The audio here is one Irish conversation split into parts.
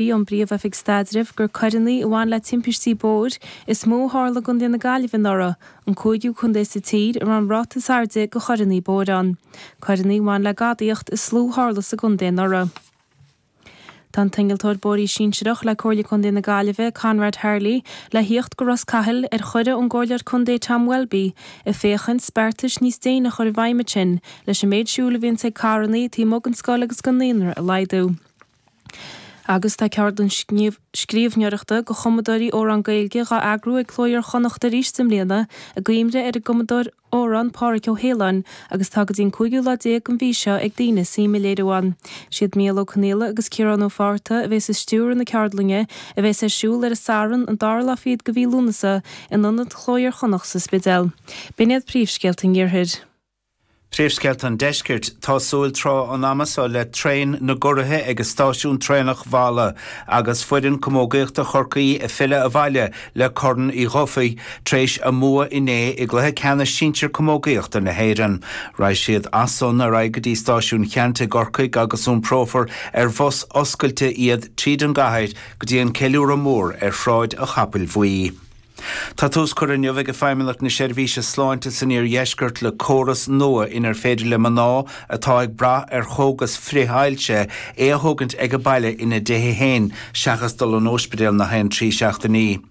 Mhaígh an Príomh-Oifig Staidrimh gur coireanna a bhain le timpistí bóthair is mó a tharla i gcontae na Gaillimhe anuraidh, an cúigiú contae sa tír a raibh an ráta is airde de choireanna bóthair ann. Coireanna a bhain le gadaíocht is lú a tharla sa gcontae anuraidh. Tá an t-innealtóir bóithre sinsearach le Comhairle Contae na Gaillimhe, Conrad Harley, le theacht go Ros Cathail ar chuireadh ón gComhairleoir Contae Tom Welby ag féachaint beartais níos déine a chur i bhfeidhm ansin leis an méid siúil a bhíonns ag carranna taobh amuigh den scoil agus den naíonra a laghdú. Agus tá ceardlann scríobhneoireachta do chumadóirí amhrán Gaeilge dhá eagrú ag Cló Iar-Chonnacht arís i mbliana, i gcuimhne ar an gcumadóir amhrán Páraic Ó hAoláin, agus tá go dtí an cúigiú lá déag den mhí seo ag daoine suim a léiriú ann. Siad Micheál Ó Conghaile agus Ciarán Ó Fátharta a bhéas ag stiúradh na ceardlainne, a bhéas ar siúl ar an Satharn, an dara lá fichead de mhí Lúnasa, in Ionad Chló Iar-Chonnacht sa Spidéal. B'in iad príomhscéalta an Iarthair. Príomhscéalta an Deiscirt, Tá súil tráth an ama seo le traein na gcuraithe ag stáisiún traenach Mhala agus foireann camógaíochta Chorcaí ag filleadh abhaile le Corn Uí Dhufaigh tar éis a mbua inné i gcluiche ceannais sinsir camógaíochta na hÉireann. Raghaidh siad as san ar aghaidh go dtí stáisiún Cheannt i gCorcaigh agus iomprófar ar bhus oscailte iad tríd an gcathair go dtí an ceiliúradh mór ar Shráid an Chapaill Bhuí. Tá tús curtha inniu ag Feidhmeannacht na Seirbhíse Sláinte san Iardheisceart le córas nua inar féidir le mná atá ag brath ar chógas frith-ailse é a thógaint ag a baile ina dtithe féin seachas dul an óispidéal nach aon trí seachtainí.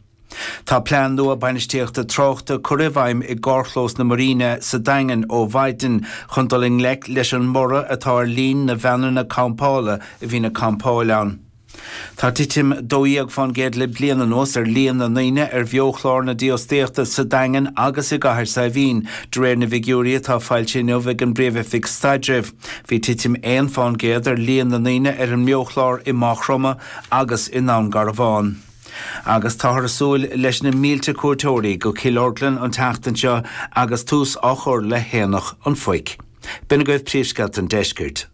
Tá plean nua bainistíochta tráchta curtha i bhfeidhm i gcarrchlós na Marina sa Daingean ó mhaidin chun dul i ngleic leis an mborradh atá ar líon na veaineanna campála a bhíonn ag campáil ann. Tá titim 12 fán gcéad le bliain anuas ar líon na ndaoine ar bheo-chlár na dífhostaíochta sa Daingean agus i gCathair Saidhbhín, de réir na bhfigiúirí atá foilsithe inniu ag an bPríomh-Oifig Staidrimh. Bhí titim 1 fán gcéad ar líon na ndaoine ar an mbeo-chlár i Maigh Chromtha agus i nDún Garbhán. Agus táthar ag súil leis na mílte cuairteoirí go Cill Orglan an tseachtain seo agus tús á chur le hAonach an Phoic. B'in agaibh príomhscéalta an deiscirt.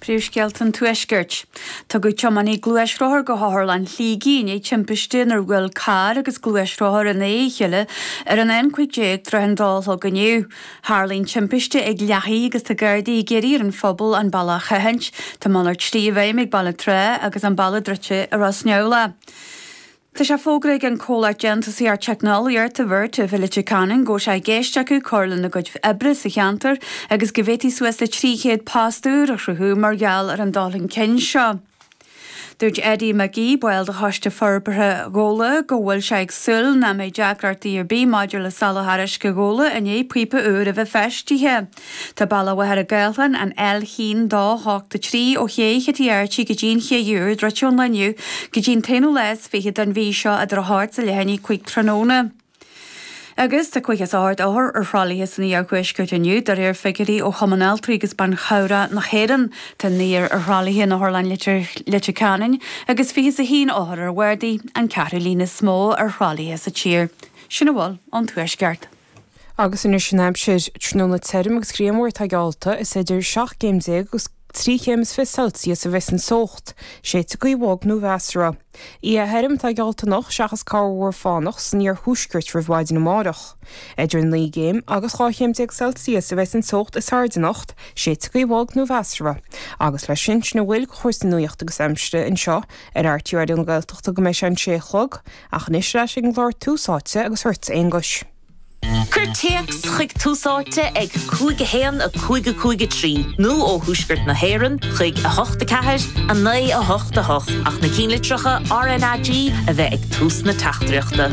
Príomhscéalta an Tuaiscirt. Tugadh tiománaí gluaisrothair go hOtharlann Shligigh i ndiaidh timpiste inar bhuail carr agus gluaisrothar in aghaidh a chéile ar an N15 tar éis an dó a chlog inniu. Tharla an timpiste ag Lathaigh agus tá Gardaí ag iarraidh ar an phobal an bealach a sheachaint. Tá malairt slí i bhfeidhm ag Baile an tSratha agus an bealach druidte i Ros Neamhlach. Tá sé fógartha ag an comhlacht déantúsaíochta teicneolaíochta Vertiv i Leitir Ceanainn go bhfuil sé i gceist acu cur lena gcuid oibre sa cheantar agus go bhféadfaí suas le 300 post úr a chruthú mar gheall ar an dul chun cinn seo. Dúirt Eddie McGee, ball de choiste forbartha Ghola, go bhfuil sé ag súil nach mbeidh deacrachtaí ar bith maidir le soláthar uisce Ghola i ndiaidh píopa úr a bheith feistithe. Tá bealach Mhachaire Gathlán, an L a haon dó hocht a trí ó Ché Chití Airtí go dtí an Ché Úr druidte ón lá inniu go dtí an t-aonú lá is fiche den mhí seo idir a hocht is leath i ndiaidh a cúig tráthnóna agus tá caoga is a hocht othar ar thralaithe san Iarthuaisceart inniu de réir figiúirí ó Chumann Altraí agus Ban Chabhrach na hÉireann. Tá naonúr ar thralaithe in Otharlann Leitir Ceanainn agus fiche is a haon othar ar bhardaí, an ceathrú líon is mó ar thralaithe sa tír. Sin a bhfuil ón Tuaisceart. Agus anois an aimsir, tráthnóna tirim agus grianmhar atá geallta, is idir seacht gcéim déag agus trí chéim is fiche Celsius a bheas an teocht, séidfidh gaoth bhog nó mheasartha. Oíche thirim atá geallta anocht seachas corrmhúr fánach san iarthuaisceart roimh mhaidin amárach. Idir naoi gcéim agus dhá chéim déag Celsius a bheas an teocht is airde anocht, séidfidh gaoth bhog nó mheasartha. Agus leis sin, sin a bhfuil de chúrsaí nuachta agus aimsire anseo ar RTÉ Raidió na Gaeltachta go mbeidh sé an sé a chlog. Ach anois ar ais ag an gclár Tús Áite agus chugat, a Aonghuis. Cuir téacs chuig Tús Áite ag 5 1 5 5 3 nó ó Thuaisceart na hÉireann chuig 8 4 9 8 8 ach na cinnlitreacha RNAG a bheith ag tús na teachtaireachta.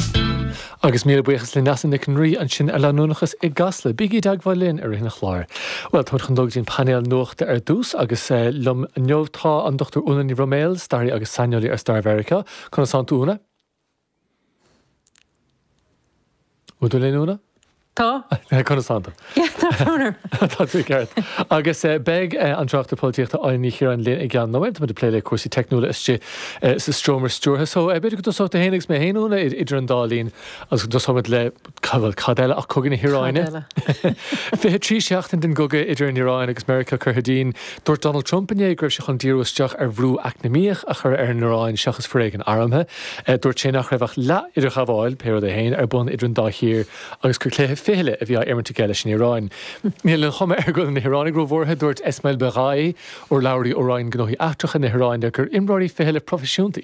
Agus míle buíochas le Neasa Nic an Rí ansin ar leanúnachas i gCasla. Bígí i dteagmháil linn i rith an chláir. Bhuel, táimid chun dul go dtí an painéal nuachta ar dtús agus liom inniu tá an Dr Úna Ní Bhroiméil, staraí agus saineolaí ar stair Mheiriceá, Conas tánn tú, a Úna? Bhfuil tú linn, Úna? Tá. Conas tá tú? Tá funar. Tá tú ceart. Agus beidh an tráchtaire polaitíochta Áine Ní Chiaráin linn i gceann nóimint, tá muid ag plé le cúrsaí teicniúla istigh sa Seomra Stiúrtha. So, b'fhéidir go dtosóidh tú féin agus mé féin, Úna, idir an dá linn agus go dtosóimid le Cad eile ach Cogadh na hIaráine? 23 seachtain den gcogadh idir an Iaráin agus Meiriceá curtha dínn. Dúirt Donald Trump inné go raibh sé chun díriú isteach ar bhrú eacnamaíoch a chur ar an Iaráin seachas foréigean armtha. Dúirt sé nach raibh ach leath-idirghabháil, pé rud é féin, ar bun idir an dá thír agus gur cluiche fichille a bhí á imirt aige leis an Iaráin. Níl an chuma air go bhfuil na hIaránaigh róbhuartha. Dúirt Esmail Baghaei, urlabhraí ó Roinn Gnóthaí Eachtracha na hIaráine, gur imreoirí fichille proifisiúnta iad.